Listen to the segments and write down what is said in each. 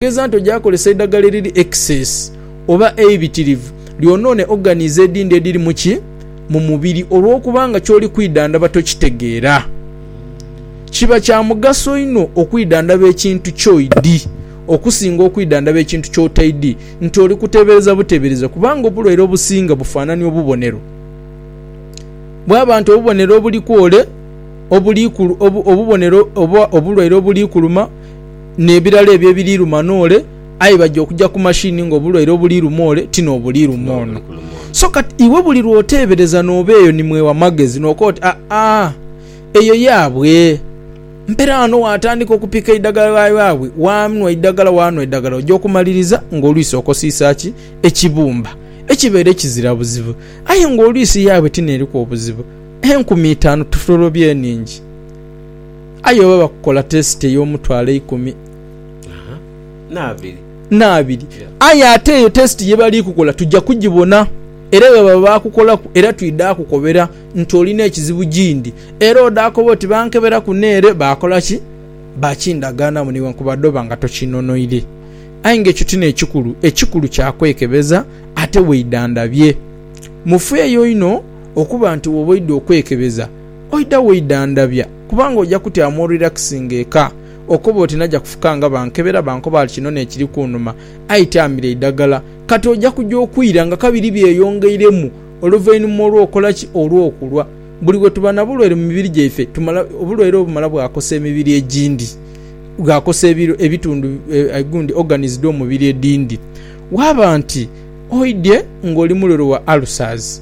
Okugeza nti oja kozesa eidhagala eriri excess oba eibitirivu lyonoone organs edindi ediri mu ki? Mu mubiri. Olw'okuba nga ky'oli kwidhandhaba tokitegeera, kiba kya mugaso inho okwidhandhaba ekintu ky'oidhi okusinga okwidhandhaba ekintu ky'otaidhi nti oli kuteebereza buteebereza kubanga obulwaire obusinga bufaanania obubonero bwaba nti obubonero obuli kwole obuli obubonero oba obulwaire obuli kuluma n'ebirala ebyo ebiri luma n'ole, aye baja okuja ku mashini nga obulwaire obuli luma ole ti n'obuli luma ono. So kati iwe buli lw'oteebereza n'oba eyo ni mwewa magezi n'okoa oti, Aa-aa, eyo yaabwe. Mpera ghano waatandika okupika eidagala lya yaabwe, waanhwa eidagala, waanhwa eidagala, oja okumaliriza ng'olwisi okosiisa ki? Ekibumba. Ekibeere kizira buzibu. Aye ng'olwisi yaabwe ti n'eriku obuzibu. Enkumi itaanu tutorobye nhingi. Aye oba bakukola tesiti ey'omutwalo eikumi n'abiri, aye ate eyo tesiti ye bali kukola tuja kugibona. Era bwe baba baakukolaku era twidha kukobera nti olina ekizibu gindi. Era odha koba oti bankeberaku n'ere baakola ki? Baakindagaanamu newankubadde oba nga tokinonoire. Aye nga ekyo ti n'ekikulu. Ekikulu kya kwekebeza ate weidhandhabye. Mufeeyo inho okuba nti bw'oba oidha okwekebeza, Oidha woidha ndabya kubanga oja kutyamu orelaxinga eka okoba oti naja kufuka nga bankebera bankoba ali kino nekiri kunuma aye tyamira eidagala kati oja kuja okwira nga kabiri byeyongeiremu oluvainuma olwokola ki olwokulwa buli wetuba nabulwaire mumibiri gyaife tumala obulwaire obumala bwakosa emibiri egindi bwakosa ebitundu gundi organs dhomubiri edindi waba nti oidhye nga oli mulwere wa ulcers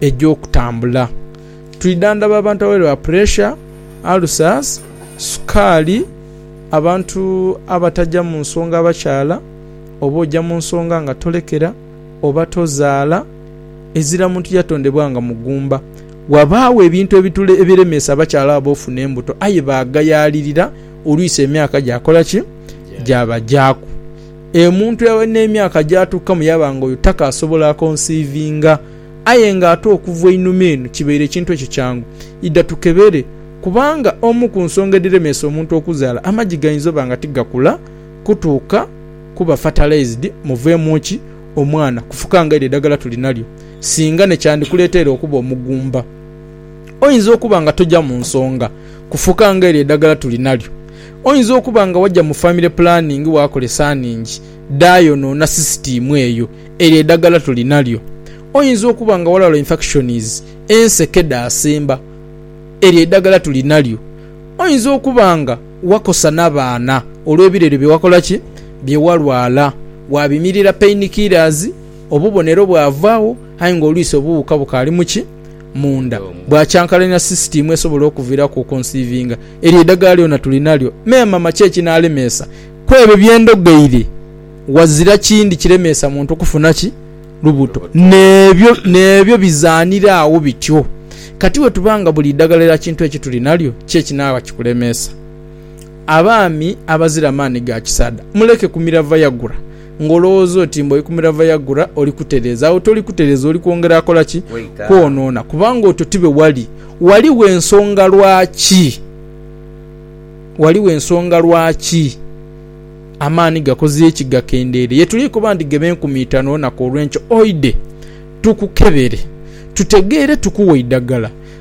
egy'okutambula. Twidhandhaba abantu abalwaire ba puresha, alusaasi, sukaali, abantu abataja mu nsonga abakyala oba oja mu nsonga nga tolekera oba tozaala, ezira muntu yatondebwa nga mugumba. Ghabaagho ebintu ebiremeesa abakyala abo ofuna embuto aye baagayaalirira olwisi emyaka gyakola ki? Gyabagyaku. Omuntu n'emyaka gy'atuukamu yaba nga oyo takaasobola akonsiivinga. Aye nga ate okuva einhuma eno kibaire ekintu ekyo kyangu. Idha tukebere, kubanga omu ku nsonga edhiremeesa omuntu okuzaala, amagi gainza oba nga tigakula kutuuka kuba fertilized muveemu ki? Omwana. Kufuka nga eryo eidhagala tuli nalyo singa ne kyandikuleteire okuba omugumba. Oyinza okuba nga toja mu nsonga kufuka nga eryo eidhagala tuli nalyo. Oyinza okuba nga waja mu famire pulaningi waakola esaaningi dhaayonoona sisitiimu eyo. Eryo edagala tuli nalyo. Oyinza okuba nga walwala infakishonizi, enseke dhaasemba. Eryo edagala tuli nalyo. Oyinza okuba nga wakosa n'abaana olw'ebirere bye wakola ki? Bye walwala. Waabimirira painikiirazi, obubonero bwavaagho aye ng'olwisi obuwuuka bukaali mu ki? munda bwa kyankalanira sisitiimu esobola okuviiraku okonsiivinga. Eryo idhagala lyona tuli nalyo. Me mama, ki ekinalemeesa? Ku ebyo bye ndhogeire, ghazira kindi kiremeesa muntu kufuna ki? Lubuto. N'ebyo, n'ebyo bizaanira agho bityo. Kati bwe tuba nga buli idhagala lya kintu eki tuli nalyo, ki ekinaaba kikulemeesa? Abaami abazira maani ga kisaadha, muleke kumira Viagra. ng'olowooza oti mbu oikumira Viagra oli kutereeza. Agho toli kutereeza, oli kwongera kola ki? Kwonoona. Kubanga otyo ti bwe wali. Ghaligho ensonga lwaki. Ghaligho ensonga lwaki amaani gakoze ki? Gakendeire. Ye tuli kuba nti ghebe nkumi itanu olunaku olw'enkyo, oidhe tukukebere tutegeere tukuwe eidagala.